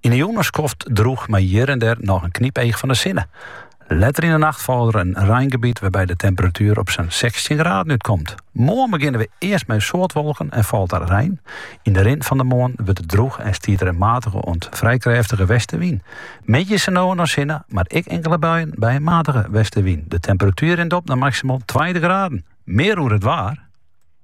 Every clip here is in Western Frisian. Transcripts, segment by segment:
Yn 'e jûn in skoft droech mei hjir en dêr noch in knypeach fan 'e sinne. Letter yn 'e nacht falt der in reingebiet wêrby't de temperatuer op sa'n sechstjin graden útkomt. Moarn begjinne we earst mei soad wolken en falt der rein. Yn 'e rin fan 'e moarn wurdt it droech en stiet der in matige oant frij krêftige westewyn. Middeis is der no en dan sinne, mar ek inkele buien by in matige westewyn. De temperatuer rint op nei maksimaal tweintich graden. Mear oer it waar.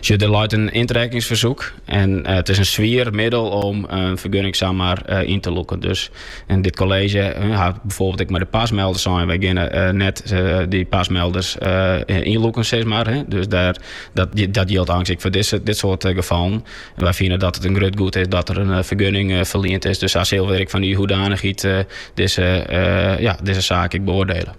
Sjoch, der leit in yntrekkingsfersoek en it is in swier middel om in fergunning samar yn te lûken. Dus dit kolleezje hat byfoarbyld ek mei de PAS-melders sein, wy geane net dy PAS-melders ynlûken sis mar. Dus dêr, dat jildt eins ek foar dit soart gefallen. Wy fine dat it in grut goed is dat der in fergunning ferliend is. Dus sa sille we ek fan dy hoedanichheid dizze, dizze saak ek beoardele.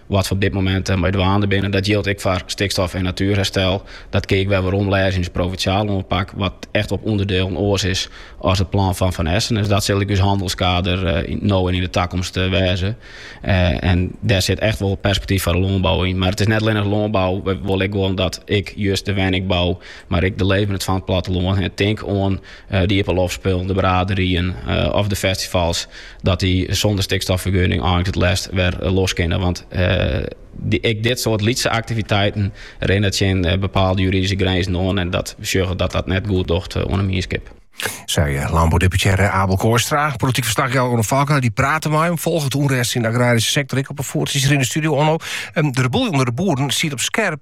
Wat we op dit momint mei dwaande binne, dat jildt ek foar stikstof en natuerherstel. Dat kin ik wol weromlêze yn de provinsjale oanpak, wat echt op ûnderdielen oars is as it plan fan Van Essen. Dus dat sil ek ús hannelskader no en yn de takomst wêze. En dêr sit echt wol perspektyf foar de lânbou yn. Mar it is net allinnich lânbou, we wolle ek wol dat ek just de wenningbou, mar ek de leefberheid fan it plattelân, tink oan de iepenloftspullen, de braderyen of de festivals, dat dy sûnder stikstoffergunning eins it leafst wer eh, los kinne. Want eh, ek dit soart lytse aktiviteiten rinne tsjin eh, bepaalde juridische grenzen oan en dat we sjogge dat dat net goed docht oan 'e mienskip. Sei eh, lânboudeputearre Abel Kooistra. Polityk ferslachjouwer Onno Falkena, dy prate mei him, folget de ûnrêst yn de agraryske sektor ek op 'e foet, is hjir yn de studio, Onno. Ehm, de boel ûnder de boeren stiet op skerp